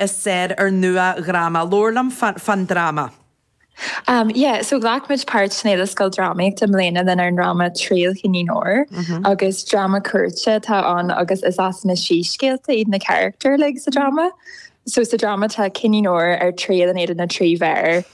is saor ar nua-dhráma. Labhair liom fán dráma. Am, yeah, so ghlac muid páirt san Fhéile Scoildrámaíochta i mbliana lenár ndráma Triail Chinnín Óir agus dráma cúirte atá ann agus is as na síscéalta iad na carachtair like, sa dráma. So sa dráma tá Cinnín Óir ar triail in éadan na trí bhéar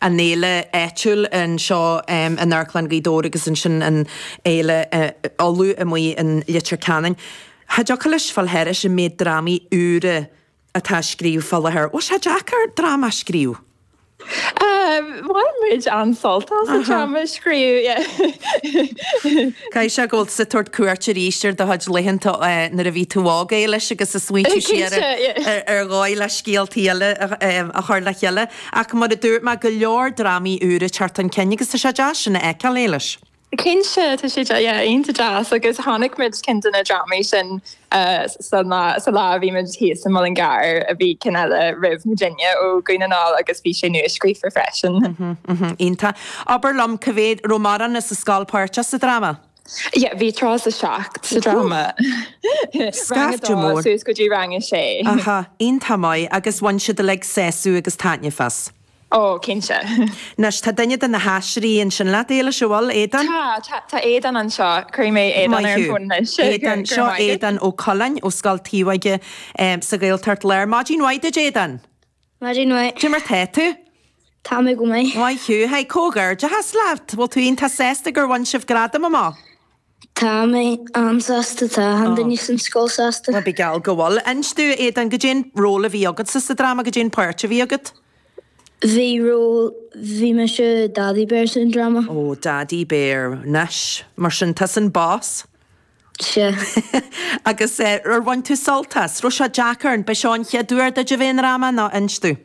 an fhéile áitiúil anseo in Amharclann Ghaoth Dobhair agus ansin an fhéile Uladh amuigh in Leitir Ceanainn. Cha dtiocfadh leis fáil thairis an méid drámaí úra atá á scríobh fá láthair. Bhfuil sé deacair dráma a scríobh? Bhain muid an-sult as an dráma a scríobh, yeah. Caithfidh sé go bhfuil tú ag tabhairt cuairt arís ar do chuid laethanta nuair a bhí tú óg, Éilis, agus ag smaointiú siar ar dhóigh le scéaltaí eile a chur le chéile. Ach mar a dúirt mé, go leor drámaí úra ag teacht chun cinn agus tá sé deas sin a fheiceáil, Éilis. Cinnte, tá sé yeah iontach deas agus chonaic muid ceann de na drámaí sin sa lá a bhí muid thíos sa Mhuileann gCearr a bhí ceann eile roimh na déine ó Dhún na nGall agus bhí sé nuascríofa freisin. Iontach. Abair liom, cá mhéad, raibh mórán as an scoil páirteach sa dráma? Yeah, bhí tríocha seacht sa dráma. Scaifte mór. Suas go dtí rang a sé. Aha, iontach maith agus bhain siad uilig sásamh agus taitneamh as. Ó, cinnte. Anois, tá duine de na haisteoirí ansin leat, Éilis, an bhfuil, Aodán? Tá, tá Aodán anseo. Cuirfidh mé Aodán ar an fón anois. Aodán, seo Aodán Ó Coileáin ó Scoil Taobhóige sa Ghaeltacht Láir. Maidin mhaith duit, Aodán. Maidin mhaith. Cad é mar tá tú? Tá mé go maith. Maith thú. Hey, comhghairdeachas leat! Bhfuil tú iontach sásta gur bhain sibh gradam amach? Tá mé an-sásta. Tá achan duine san scoil sásta. Bíodh geall go bhfuil. Inis domh, Aodán, cad é an ról a bhí agatsa sa dráma, cad é an pháirt a bhí agat? Bhí ról, bhí mise Daidí Béar san dráma. Ó, Daidí Béar. Anois, mar sin, tusa an Boss? Sea. Agus ar bhain tú sult as? Raibh sé deacair? An b'é seo an chéad uair duit a bheith i ndráma nó inis domh?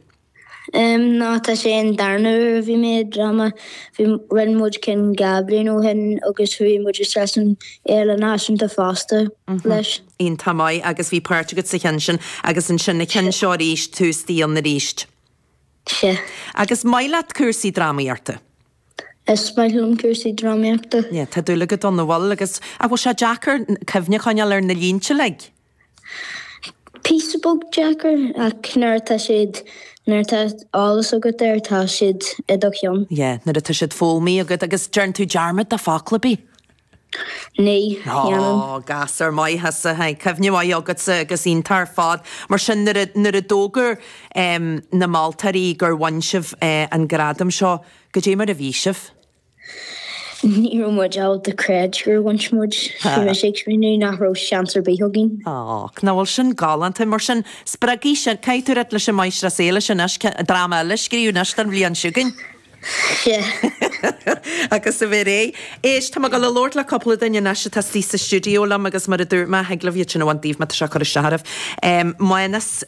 Em, no, tá sé an darna uair a bhí mé i dráma. Bhí, rinne muid ceann dhá bliain ó shin agus bhí muid isteach san Fhéile Náisiúnta fosta leis. Iontach maith. Agus bhí páirt agat sa cheann sin agus ansin an ceann seo arís, tús, dialann arís. Sea. Agus is maith leat cúrsaí drámaíochta? Is maith liom cúrsaí drámaíochta. Yeah, tá dúil agat ann an bhfuil agus an bhfuil sé deacair cuimhne a choinneáil ar na línte uilig? Píosa beag deacair ach nuair atá siad, nuair atá eolas agat air tá siad i do cheann. Yeah, nuair atá siad foghlamtha agat agus dearn tú dearmad de fhocal ar bith. Ní dhéanann. Ó, gasúr maith thusa. Cuimhne mhaith agatsa agus iontach ar fad. Mar sin, nuair a d'fhógair na moltóirí gur bhain sibh an gradam seo, goidé mar a bhí sibh? Ní raibh muid ábalta creid gur bhain muid. Bhí mise ag smaoineamh nach raibh seans ar bith againn. Ó, now bhuel sin galánta. Mar sin, spreagfaidh sin, caithfidh tú a ráit leis an Máistreás Alison anois, dráma eile a scríobh anois don bhliain seo chugainn. Agus a bheith réidh. Éist, tá mé ag gabháil a labhairt le cúpla duine anois atá istigh sa stiúideo liom agus mar a dúirt mé, thig libh iad sin a bhaint daoibh má tá sé ag cur isteach oraibh. Mánas,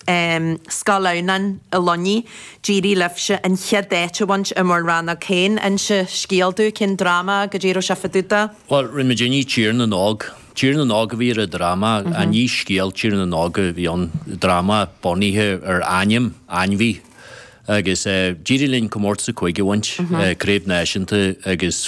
Scoil Adhamhnáin i Luinnigh, d'éirigh libhse an chéad áit a bhaint i bhur rannóg féin. Inis scéal dúinn, cén dráma go díreach a thiofaid tú do? Bhuel, rinne muidinne Tír na nÓg. Tír na nÓg a bhí ar an dráma, ach ní scéal Tír na nÓg a bhí ann, dráma bunaithe ar ainm ainmhí. Agus d'éirigh linn comórtas a 5 a bhaint, craobh náisiúnta agus.